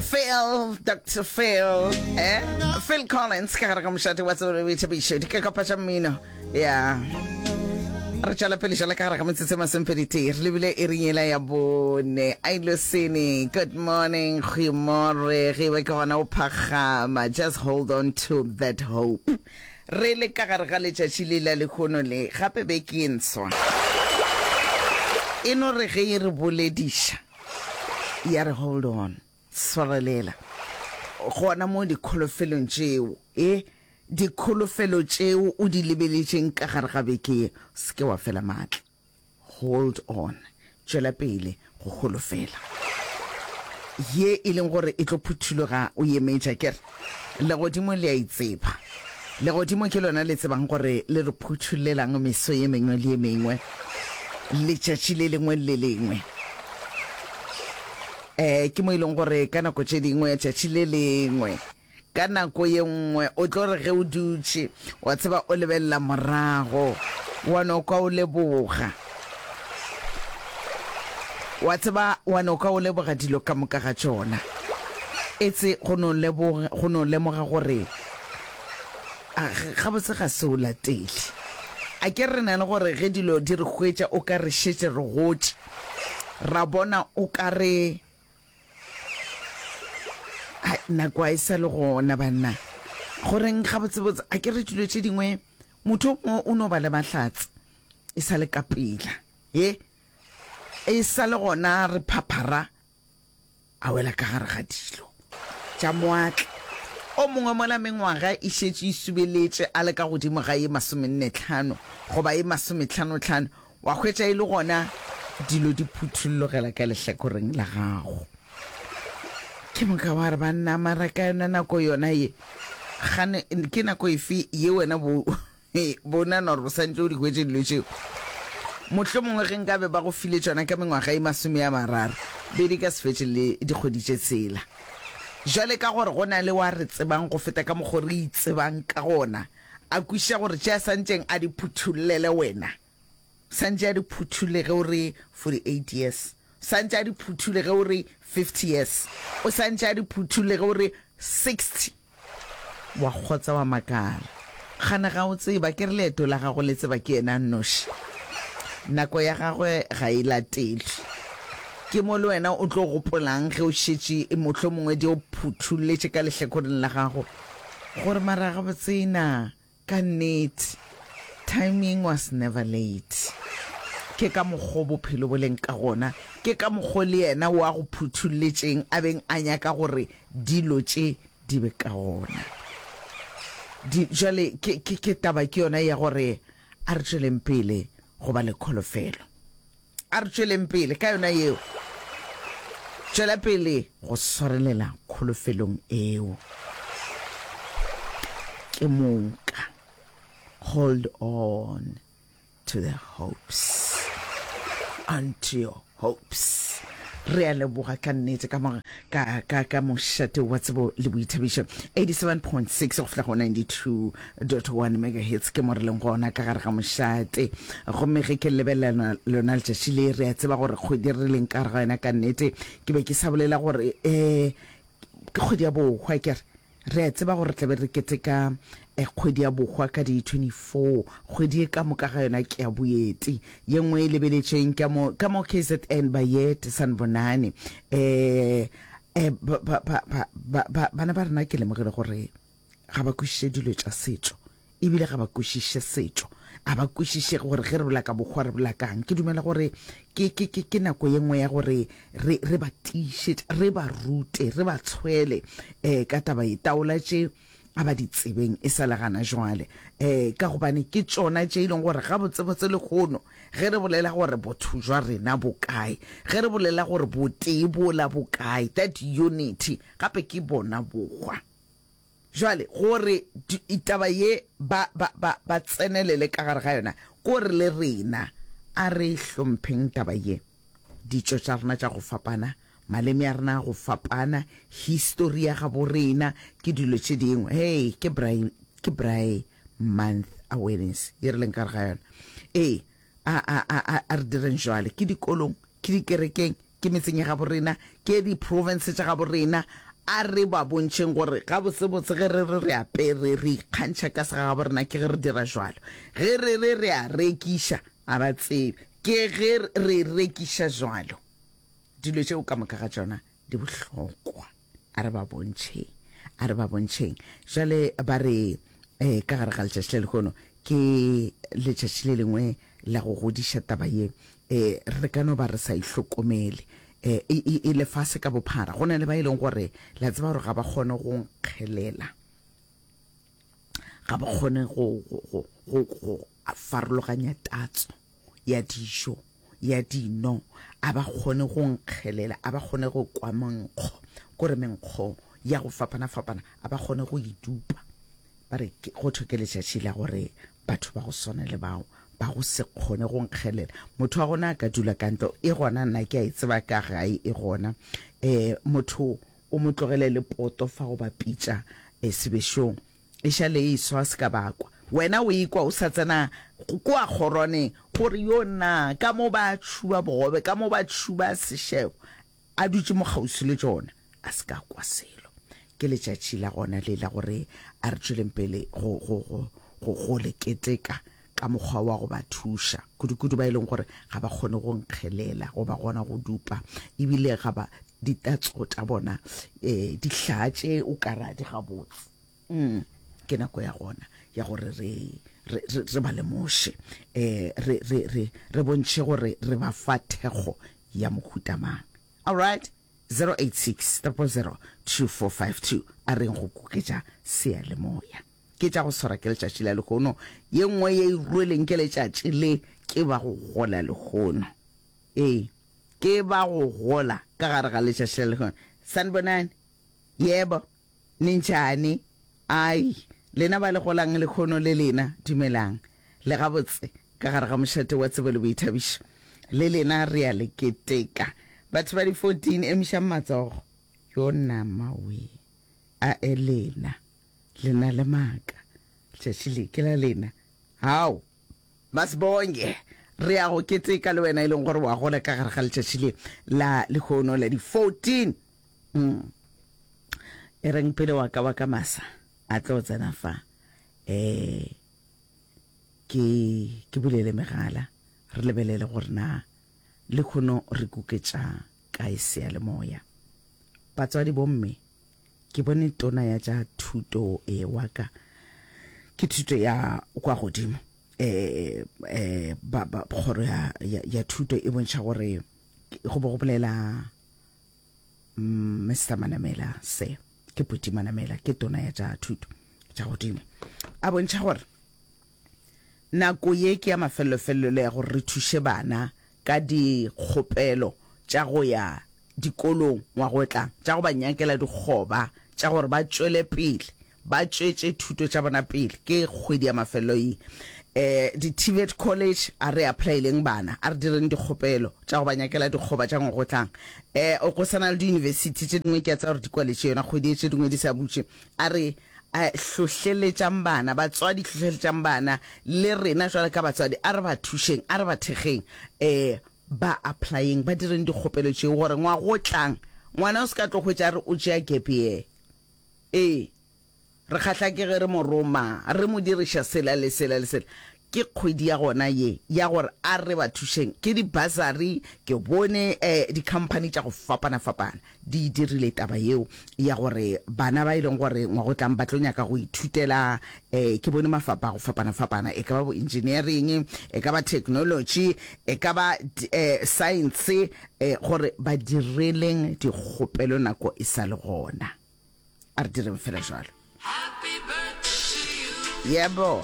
Phil, Dr. Phil, eh? Phil Collins, ka gare ga mošate wa tsebolo o ithabišo, di ka kopa tša mmino, ya. Re tšwela pele jala ka gare ga metsotso e masompheditee, re lebile e reng ela ya bone. Ai Losene, good morning, goimore, ge be ke gona o phagama, just hold on to that hope. Re le ka gare ga letšatši le la lekgono le, gape be ke nswa. E no re ge e re bolediša, ya re hold on swarelela gona mo dikgolofelong tšeo e dikgolofelo tšeo o di lebeletšeng ka gare ga beke ye se ke wa fela maatla hold on tšwela pele go golofela ye e leng gore e tlo phuthuloga o yemetša kere Legodimo le a itseba. Legodimo ke lona le tsebang gore le re phutšhulelang meso ye mengwe le ye mengwe, letšatši le lengwe le le lengwe. Um ke mo e leng gore ka nako tše dingwe tšatši le lengwe ka nako ye nngwe o tlo re ge o dutše wa tseba o lebelela morago wa no kwa o leboga Wa tseba, wa no ka o leboga dilo ka moka ga tšona. Etse go no leboga, go no lemoga gore a, gabotse ga se o latele. A ke re na le gore ge dilo di re hwetša o ka re šetše re gotše, ra bona o ka re Hai, nako a e sa le gona banna. Goreng gabotsebotse? A ke re dilo tše dingwe motho o mongwe o no ba le mahlatse. E sa le ka pela ye, e sa le gona re phaphara a wela ka gare ga dilo tša moatla. O mongwe mola mengwaga e šetše e subeletše a le ka godimo ga ye masomenne-tlhano goba ye masometlhano-tlhano, wa hwetša e le gona dilo di phuthullogela ka lehlakoreng la gago. Ke moka wa re, Banna, mara ka yona nako yona ye, gane, ke nako efe ye wena bo E, bona nor o santse o di hwetše dilo tšeo. Mohlomongwe ge nkabe ba go file tšona ka mengwaga e masome ya mararo, be di ka se fetše le dikgwedi tše tshela. Bjale ka gore go na le wa re tsebang go feta ka mokgo re itsebang ka gona, a kwešiša gore tše a santšeng a di phuthullele wena. Santše a di phuthule ge o re 48 years. Santše a di phuthule ge o re 50 years. O santše a di phuthule ge o re 60. Wa kgotsa wa makala. Gana ga o tseba, ke re leeto la gago le tseba ke yena a nnoši. Nako ya gagwe ga e latelwe. Ke mo le wena o tlo gopolang ge o šetše mohlomongwe di o phuthuletše ka lehlekoreng la gago gore mara gabotse na Ka nnete, timing was never late. Ke ka mokgo bophelo bo leng ka gona, ke ka mokgo le yena o a go phutholletšeng a beng a nyaka gore dilo tše di be ka gona. Di, jwale ke, ke, ke taba ke yona ya gore a re tšweleng pele go ba le kholofelo. A re tšweleng pele ka yona yeo. Tšwela pele go swarelela kholofelong eo. Ke moka. Hold on to the hopes. Unto your hopes. Re a leboga ka nnete ka ka, ka, ka mošate wa tsebo le boithabišo, 87.6 go fihla go 92.1 megahertz ke mo re leng gona ka gare ga mošate. Gomme ge ke lebelela lona letšatši le, re a tseba gore kgwedi re leng ka gare ga yona ka nnete. Ke be ke sa bolela gore eh ke kgwedi ya bohwa ke re. Re a tseba gore re tla be re keteka Kgwedi ya Bohwa ka di 24, kgwedi ye ka moka ga yona ke ya boeti. Ye nngwe e lebeletšweng ke ya mo, ka mo kzn, Bayede, Sanbonani. Eh, eh, ba, ba, ba, ba, ba, ba, bana ba rena ke lemogile gore ga ba kwešiše dilo tša setšo. ebile ga ba kwešiše setšo, a ba kwešiše gore ge re bolela ka bokgowa re bolela kang. Ke dumela gore ke, ke, ke, ke nako ye nngwe ya gore re, re ba tiišetše, re ba rute, re ba tshwele um ka taba ye. Taola tše a ba di tsebeng e sa le gana jwale, um ka gobane ke tšona tše e leng gore gabotsebotse lekgono ge re bolela gore botho jwa rena bo kae, ge re bolela gore botee bola bo kae, that unity, gape ke bona bokgwa. Bjale, gore di, taba ye ba, ba, ba, ba tsenelele ka gare ga yona, ke gore le rena a re e hlompheng taba ye. Ditšo tša rena tša go fapana, maleme a rena a go fapana, histori ya gabo rena, ke dilo tše dingwe. Hei, ke Braai, ke Braai Month Awareness ye re leng ka gare ga yona. Ee, a, a, a, a, a re direng jwale, ke dikolong, ke dikerekeng, Ke metseng ya gabo rena, ke di province tša gabo rena, a re ba bontšheng gore gabotsebotse ge re re re apere re ikgantšha ka se ga gabo rena ke ge re dira jwalo, ge re re re a rekiša a ba tsebe ke ge re rekiša jwalo. Dilo tšeo ka moka ga tšona di bohlokwa. A re ba bontšheng, a re ba bontšheng. Jale ba re, eh, ka gare ga letšatši le lehono, ke letšatši le lengwe la go godiša taba ye. Eh, re ka no ba re sa e hlokomele. Eh, e, e, e lefase ka bophara. Go na le ba e leng gore, la tseba gore ga ba kgone go nkgelela. ga ba kgone go, go, go, go, go farologanya tatso ya dijo ya dino a ba kgone go nkgelela a ba kgone go kwa menkgo kore menkgo ya go fapana-fapana a ba kgone go idupa ba re go thwe ke letšatši la gore batho ba go swana le bao ba go se kgone go nkgelela motho wa gona a ka dula ka ntlo e gona nna ke a e tseba ka gae e gona um motho O mo tlogele le poto fa go ba pitša sebešong. E šale e swa se ka bakwa. Wena o ikwa o sa tsena kua kgoroneng o re, Yo na, ka mo ba tšhuba bogobe, ka mo ba tšhuba sešebo. A dutše mo kgauswi le tšona. A se ka kwa selo. Ke letšatši la gona le la gore a re tšweleng pele go, go, go, go, go le keteka. ka mokgwa wa go ba thuša, kudukudu ba e leng gore ga ba kgone go nkgelela goba gona go dupa, e bile ga ba ditatso tša bona um dihlaa tše o ka ra di gabotse. Um ke nako ya gona ya gore re re, re, re ba lemoše, um re, re, re, re bontšhe gore re ba fa thekgo ya mohuta mang. Alright? 086 000 2452 A reng go kuketša seyalemoya. Ke tša go swara ke letšatši la lehono, ye nngwe ye e rweleng ke letšatši le ke ba go gola lehono. Ee, ke ba go gola ka gare ga letšatši la lehono. Sanibonani? Yebo. Ninjani? Ai, lena ba le golang lehono le lena, dumelang. Le gabotse, ka gare ga mošate wa tsebo le boithabišo. Le lena re a le keteka. Batho ba di-fourteen, emišang matsogo. Yona mawee! A Elena! Le na le maaka. Letšatši le ke la lena. Hao! Masibonge! Re ya go keteka le wena e leng gore wa gola ka gare ga letšatši le la lehono la di 14. Mm. E reng pele wa ka wa ka masa a tlo tsena fa. Eh, ke, ke bulele megala. Re lebelele gore na lehono re kuketša kae seyalemoya. Batswadi bomme. Ke bone tona ya tša thuto e wa ka ke thuto ya kwa godimo eh eh ba ba kgoro ya ya thuto e bontšha gore go bo go bolela mm, Mr Manamela se ke Puti Manamela ke tona ya tša thuto tša godimo a bontšha gore Nako ye ke ya mafelelo-felelo ya gore re thuše bana ka dikgopelo tša go ya dikolong ngwaga o tlang, tša go ba nyakela dikgoba tša gore ba tšwele pele ba tšwetše thuto tša bona pele. Ke kgwedi ya mafelelo ye. Um, di-TVET college, a re apply-eleng bana, a re direng dikgopelo tša go ba nyakela dikgoba tša ngwaga o tlang. Um, go sa na le diyunibesithi tše dingwe ke a tseba gore di kwaletše yona kgwedi ye, tše dingwe di sa butše. A re A hlohleletšang bana, batswadi hlohleletšang bana, le rena jwale ka batswadi a re ba thušeng, a re ba thekgeng, e, ba applyeng, ba direng dikgopelo tšeo, gore ngwaga o tlang ngwana o se ka tlo hwetša a re o tšea gap year. E, re kgahla ke ge re mo roma, re mo diriša sela le sela le sela. Ke kgwedi ya gona ye ya gore a re ba thušeng ke di bursary. Ke bone eh di company tša go fapana fapana di e dirile taba yeo ya gore bana ba e leng gore ngwagotlang ba tlo nyaka go ithutela eh ke bone mafapa a go fapana fapana e ka ba bo engineering e ka ba technology e ka ba eh science eh gore ba direleng dikgopelo nako e sa le gona a re direng fela jwalo. Happy birthday to you. Yebo.